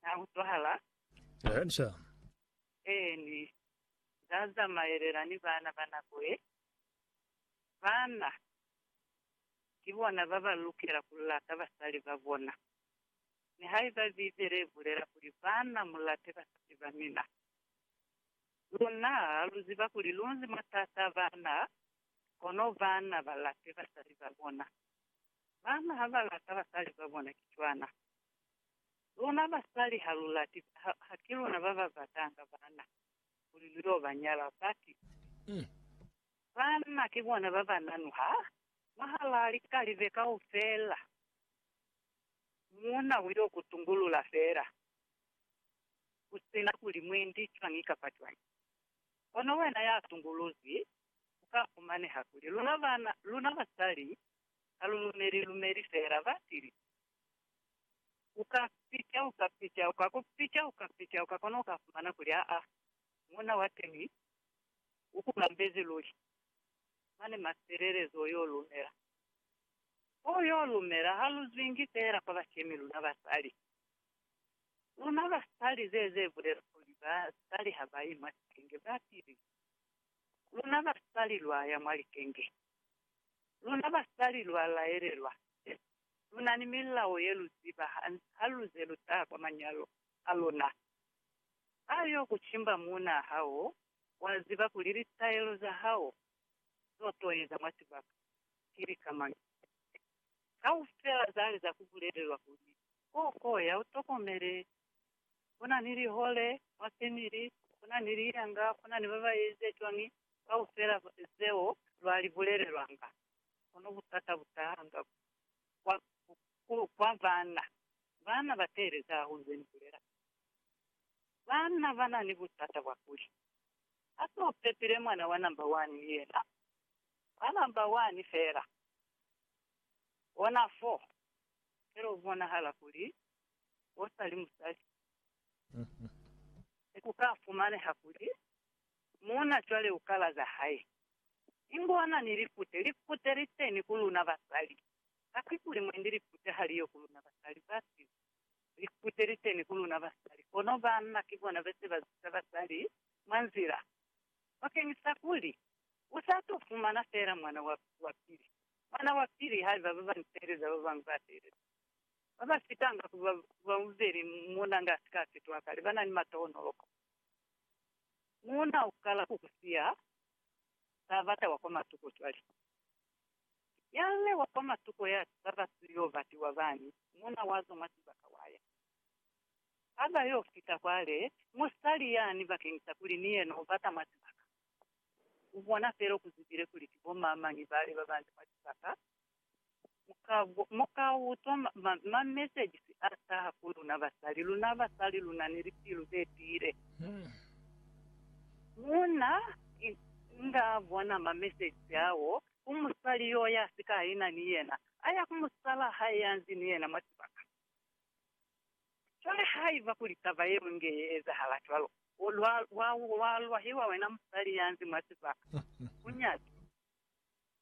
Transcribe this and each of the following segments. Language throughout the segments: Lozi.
Na utwahala? Go ahead, sir. Eeni, Nda zamaelela ni bana ba nako ye. Bana ki bona ba ba lukela ku lata basali ba bona. Nihaiba Bibele i bulela kuli, Bana, mu late basali ba mina. Luna lu ziba kuli lu nzi mwa taata a bana, kono bana ba late basali ba bona. Bana ha ba lata basali ba bona ki cwana. Luna basali ha lu lati, ha, ha ki luna ba ba batanga bana kuli lu y'o ba nyala. Baki. Bana ki bona ba ba nanuha mwahalaa likalibe kaufela. Muuna u y'o ku tungulula fela, ku si na kuli mwendi cwañi kapa cwañi. Kono wena ya tunguluzwi, ku ka fumaneha kuli luna bana, luna basali, ha lu lumeli lumeli feela ba sili. U ka pica, u ka pica, u ka ku pica, u ka pica, u ka kona ku ka fumana kuli aa, muuna wa teñi u ku kambezi luli. Mane mafelelezo u y'o lumela. Ko u y'o lumela ha lu zwingi feela kwa bashemi luna basali. Luna basali, ze, ze bulela kuli basali ha ba i mwa sicenge, ba sili. luna basali lwa ya mwa likenge. Luna basali lwa laelelwa ze lu na ni milao ye lu ziba ha lu ze lu taha kwa manyalo a luna. Ha yo ku cimba muunaa hao, wa ziba kuli litaelo za hao zo to eza mwa sibaka ki lika mañi. Kaufela zali za ku bulelelwa kuli, Koo, koo, ya u tokomele Kuna ni lihole mwa family, kuna ni liyanga, kuna ni baba eze cwañi, kaufela zeo lwa li bulelelwanga. Kono butata butahanga kwa, ku, kwa bana. Bana ba teelezi hahulu ze ni bulela. Bana ba na ni butata bwa kuli, Ha se u pepile mwana wa number one ni yena, wa number one fela. Ona foo. Fela u bonahala kuli o sa li musali. Ku ka fumaneha kuli muuna cwale u kala za hae, ingo a na ni likute. Likute li teñi ku luna basali. Kakuli mwendi likute ha li yo ku luna basali, ba size. Likute li teñi ku luna basali, kono banna ki bona ba se ba ziza basali mwa nzila. Bakeñisa kuli u sa t'o fumana feela mwana wa pili, mwana wa pili haiba ba bañi teeleza ba bañwi ba teeleza. Ba ba fitanga ku ba bauzeli muuna nga si ka fitwa kale ba na ni mata o noloko. Muuna u kala ku ku siya, ba bata wa kwa matuko cwale. Nyal'le wa kwa matuko ya taba ku yo batiwa bani, muuna wa zwa mwa sibaka wa ya. Ha ba yo fita kwale, musali yani bakeñisa kuli ni yena u bata mwa sibaka, u bona fela ku zibile kuli ki bo mamañi bale ba banze mwa sibaka, Mukauto ma messages a taha ku luna basali, luna basali luna ni lipilu ze tiile. Muna nga bona ma messages ao ku musali yo ya sika aina ni yena, aya ku musala hae ya nzi ni yena mwa sibaka. Cwale haiba kuli taba yeo inge ye ezahala cwalo, wa lwahiwa wena musali ya nzi mwa sibaka, ku nyaki.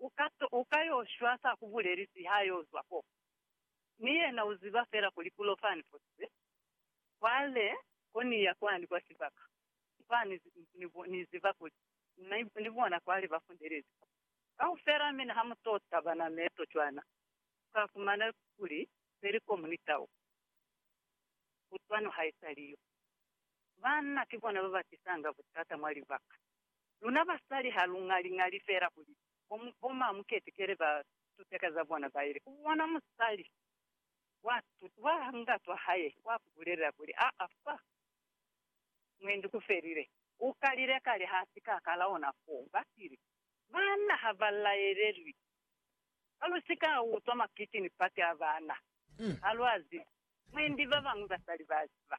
u ka yo shwa sa ku bulelisi ha yo zwa ko. Mi yena u ziba fela kuli ku lo fani fosize. Cwale, ko ni ya kwani kwa sibaka. Kwani, ni ziba kuli ni bona kwale ba fundelezi ko. Kaufela mina ha mu to taba na meto cwana, u ka fumana kuli peli ko mu ni tau. Kutwano haisali yo. Banna ki bona ba ba tisanga butata mwa libaka. Luna basali ha lu ŋali-ŋali fela kuli bo ma muketekele ba tuteka za bona ba ile ku bona musali wa tutu wa ngatwa hae wa ku bulelela kuli, Aa fa mwendi ku felile. U kalile kale ha si ka kala ona fo. Ba tile. Banna ha ba laelelwi. Ha lu si ka utwa makiti ni pati a bana. Ha lwa zibi. Mwendi ba bañwi basali ba ziba.